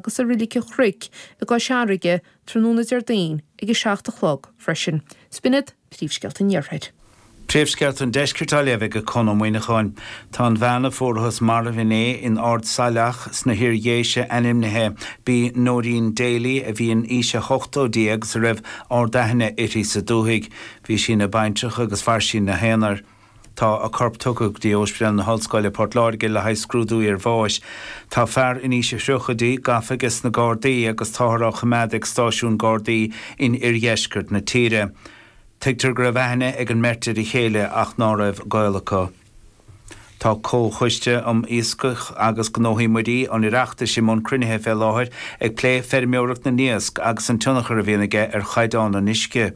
agus i Roilig an Chnoic i gCois Fharraige tráthnóna Déardaoin ag 7 a chlog freisin. Is b'in iad Príomhscéalta an Iarthair. Príomhscéalta an Deiscirt á léamh ag Conn Ó Muíneacháin. Tá an bhean a fuarathas marbh inné in Ard Saileach sna hIar Dhéise ainmnithe b'í Noreen Daly a bhí in aois a hochtóidí agus a raibh ardaithne uirthi sa dúthaigh. Bhí sí ina baintreach agus mhair sí ina haonar. Tá a corp tugtha go dtí Óispidéal na hOllscoile, Port Láirge le haghaidh scrúdú iarbháis. Tá fear in aois a thríochaidí gafa aiges na Gardaí agus táthar á choimeád ag stáisiún Gardaí in oirdheisceart na tíre. Tuigtear go raibh aithne ag an mbeirt ar a chéile ach ná raibh gaol acu. Tá Comhchoiste um Iascaigh agus Gnóthaí Muirí an Oireachtais i mbun cruinnithe fé láthair ag plé feirmeoireacht na n-iasc agus an tionchar a bhíonn aige ar chaighdeán an uisce.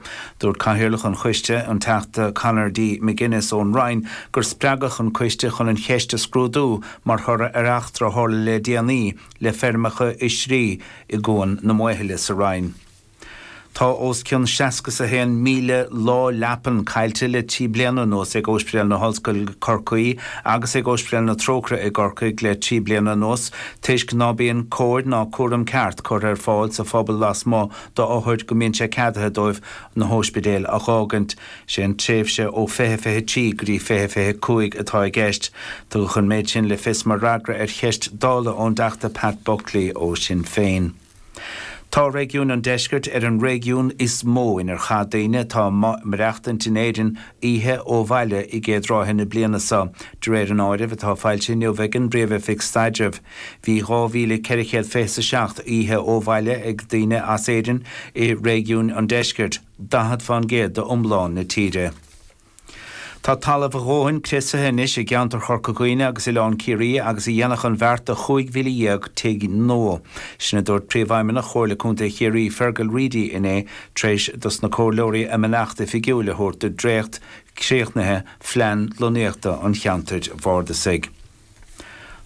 Dúirt Cathaoirleach an Choiste, an Teachta Conor D. McGuinness ón Rinn, gur spreagadh an coiste chun an cheist a scrúdú mar thoradh ar eachtra a tharla le déanaí le feirmeacha oisrí i gCuan na Maothaile sa Rinn. Tá os cionn seasca 's a haon míle lá leapan caillte le trí bliana anuas ag Óispidéal na hOllscoile Corcaí agus ag Óispidéal na Trócaire i gCorcaigh le trí bliana anuas toisc ná bíonn cóir ná cúram ceart curtha ar fáil sa phobal lasmuigh do othair go mbíonn sé ceadaithe dóibh na hóispidéil a dh'fhágaint. Sé an tréimhse ó fiche fiche trí go dtí fiche fiche cúig atá i gceist. Tugadh an méid sin le fios mar fhreagra ar cheist Dála ón dTeachta Pat Buckley ó Sinn Féin. Tá réigiún an Deiscirt ar an réigiún is mó inar chaith daoine atá ag maireachtaint in Éirinn oíche ó bhaile i gcéad ráithe na bliana seo, de réir an áirimh atá foilsithe inniu ag an bPríomh-Oifig Staidrimh. Bhí 2,400 fiche is a seacht oíche ó bhaile ag daoine as Éirinn i réigiún an Deiscirt, 40 fén gcéad d'iomlán na tíre. Tá talamh a dhóthain criosaithe anois i gceantar Chorca Dhuibhne agus Oileán Ciarraí agus a dhéanfadh an bheart do chúig mhíle dhéag tigh nua. Sin a dúirt Príomhfheidhmeannach Chomhairle Contae Chiarraí, Fearghal Reidy inné tar éis dos na Comhairleoirí a mbeannacht oifigiúil a thabhairt do dhréacht críochnaithe phlean lonnaíochta an cheantair bhardasaigh.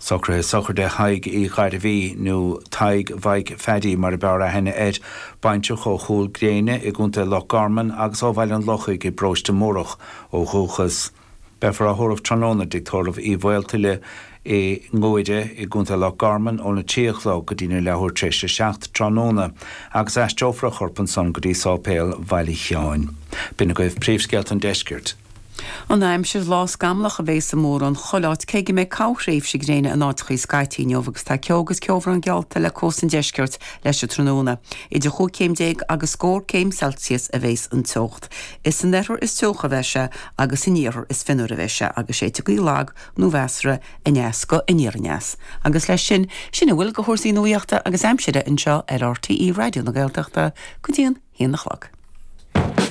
Socruithe sochraide Thaidhg Uí Ghairbhí, nó Tadhg Mhaidhc Phaddy mar a b'fhearr aithne air, baintreach ó Chúil Ghréine i gContae Loch Garman agus ó Bhaile an Lochaigh i bParóiste Múrach ó dhúchas. Beifear á thórramh tráthnóna i dtigh tórraimh Uí Mhaoltuile i nGuaire i gContae Loch Garman óna trí a chlog go dtína leathuair tar éis a seacht tráthnóna agus aistreofar a chorp ansan go dtí Sáipéal Bhaile Sheáin. B'in agaibh príomhscéalta an Deiscirt. An aimsir, Lá scamallach a bheidh i mórán chuile áit cé go mbeidh corrthréimhse gréine in áiteachaí scaití inniu agus tá ceo agus ceobhrán geallta le cósta an deiscirt leis an tráthnóna. Idir chúig chéim déag agus scór céim Celsius a bheidhs an teocht. Is san oirthear is teocha a bheidh sé agus san iarthar is fionnuaire a bheidh sé agus séidfidh gaoth lag nó mheasartha aneas go aniar aneas. Agus leis sin, sin a bhfuil de chúrsaí nuaíochta agus aimsire anseo ar RTÉ Raidió na Gaeltachta go dtí an haon a chlog.